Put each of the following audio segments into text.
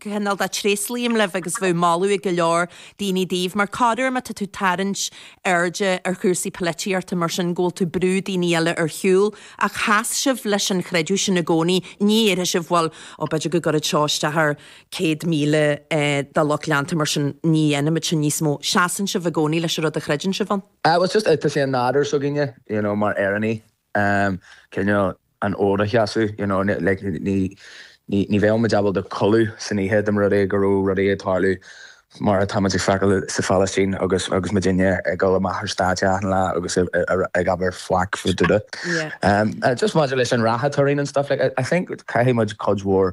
cineál de, tréaslaím libh agus bheadh moladh ag go leor daoine daoibh mar go háirid má tá tú tarraingt airde ar chúrsaí poilitíochta mar sin go bhfuil tú brú daoine eile ar shiúl ach sheas sibh leis an chreideamh sin i gcónaí ní dhéarfaidh sibh bhuel ó b'fhéidir go gcuirfidh seo isteach ar 100,000 dá lucht leanta mar sin ní dhéanfaimid sin níos mó seasann sibh i gcónaí leis an rud a chreideann sibh ann. It was just, tá sé i nádúr s'againne, you know, mar Éireannaigh, am cineál an fód a sheasamh, you know, like ní, ní, ní bheadh muid ábalta codladh san oíche dá mba rud é go raibh rudaí ag tarlú mar atá muid ag feiceáil sa Phalaistín agus, agus muidinne ag dul amach ar stáitse achan lá agus ag, ag abair faic faoi dada. Yeah. Just maidir leis an rath atá orainn and stuff like I think caithfidh muid cuid mhór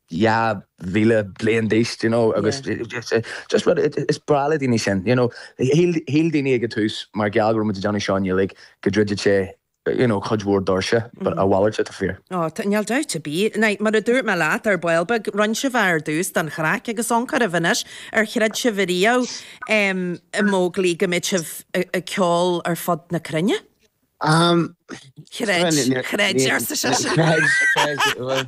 2,000 bliain d'aois d'you know agus just rud is breá le daoine sin d'you know shíl daoine ag an tús mar gheall go raibh muid ag déanamh seo i nGaeilge go ndruidfeadh sé d'you know cuid mhór doirse but a mhalairt atá fíor. Oh tá, níl dabht ar bith. Now mar a dúirt mé leat ar ball beag rinne sibh é ar dtús don chraic agus ón chroí. Anois ar chreid sibh ariamh em a Mhóglaí go mbeadh sibh ag ceol ar fud na cruinne? Am, chreid, chreid arsa sise. Chreid, chreid, bhuel.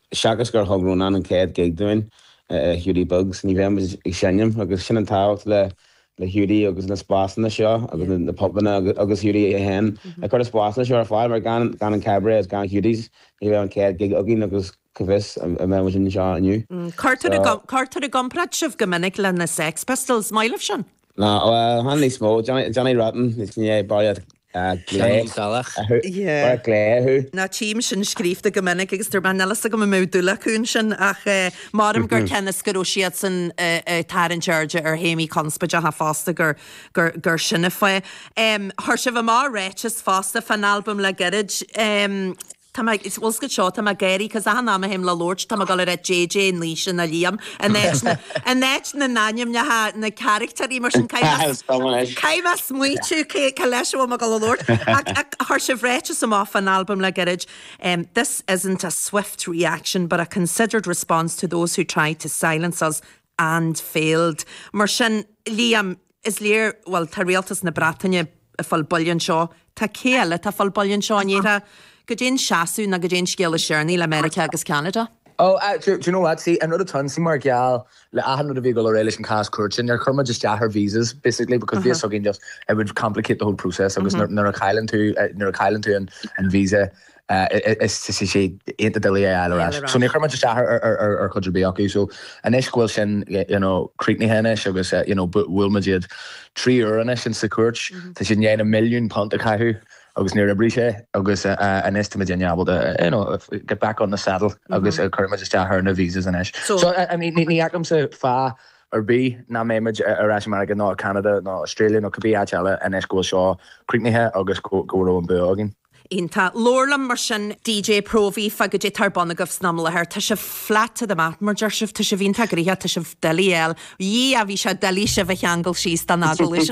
Seachas gur thug Rónán an chéad ghig dúinn, i Hiúdaí Beag's, ní bheadh muid ag seinm agus sin an tábhacht le Hiúdaí agus na spásanna seo agus na pubanna agus Hiúdaí féin ag cur na spásanna seo ar fáil mar gan an Cabaret agus gan Hiúdaí's ní bheadh an chéad ghig againn agus cá bhfios an mbeadh muid anseo inniu. Cuirtear i gcomparáid sibh go minic le na Sex Pistols, maith libh sin! Ná bhuel, chan níos mó. Johnny, Johnny Rotten, is ní é Barry at Glé, Seáinín Salach. a thu, Barry at Glé a thu. Ná tchím sin scríobhta go minic agus tá mé, níl a fhios agam an mbeadh dúil acu ansin ach eh creidim gur cionn is go raibh siadsan a a tarraingt airde ar théamaí conspóideacha fosta gur gur gur sin an fáth. Em chuir sibh amach ráiteas fosta fán albam le gairid em Tá mé ag, bhuel scuit seo, tá mé ag éirí cause achan am a théim le labhairt tá mé ag dul a ráit JJ, Naoise ná Liam in áit na, in áit na n-ainmneacha na caractéirí mar sin caithfidh mé, caithfidh mé smaoitiú cé, cé leis a bhfuil mé ag dul a labhairt ach, ach chuir sibh ráiteas amach fán albam le gairid This isn't a swift reaction but a considered response to those who tried to silence us and failed mar sin Liam, is léir, bhuel, tá rialtas na Breataine ag fáil buille anseo, tá cé eile atá ag fáil buille anseo in Éirinn? Goidé an seasamh nó goidé an scéal is deireanaí le Meiriceá agus Ceanada? Ó, ah, do you know what, see, an rud atá ann, see mar gheall le achan rud a bhí ag dul ar aghaidh leis an cás cúirte, níor chuir muid isteach ar visas, basically, because bhí a fhios againn just, it would complicate the whole process agus nuair a chailleann tú, nuair a chailleann tú an visa, Is tá sé iontach doiligh é a fháil ar ais. So níor chuir muid isteach ar cheann ar bith acu. So anois go bhfuil sin you know críochnaithe anois agus you know bhuail muid iad trí huaire anois ins sa chúirt tá siad i ndiaidh na milliúin punt a chaitheamh agus níor oibrigh sé agus anois tá muid in ann ábalta you know get back on the saddle agus cuirfidh muid isteach ar na visas anois. So So I mean ní fheicimse fáth ar bith nach mbeidh muid ar ais i Meiriceá nó i Ceanada nó Australia nó cibé áit eile anois go bhfuil seo críochnaithe agus go go raibh an bua againn. Iontach. Labhair liom mar sin. DJ, Próvaí, fá cad é atá ar bun agaibh san am i láthair. Tá sibh flat to the mat mar a deir sibh. Tá sibh iontach gnoitheach. Tá sibh doiligh a fháil. Dhia, bhí sé doiligh sibh a cheangal síos don agallamh seo.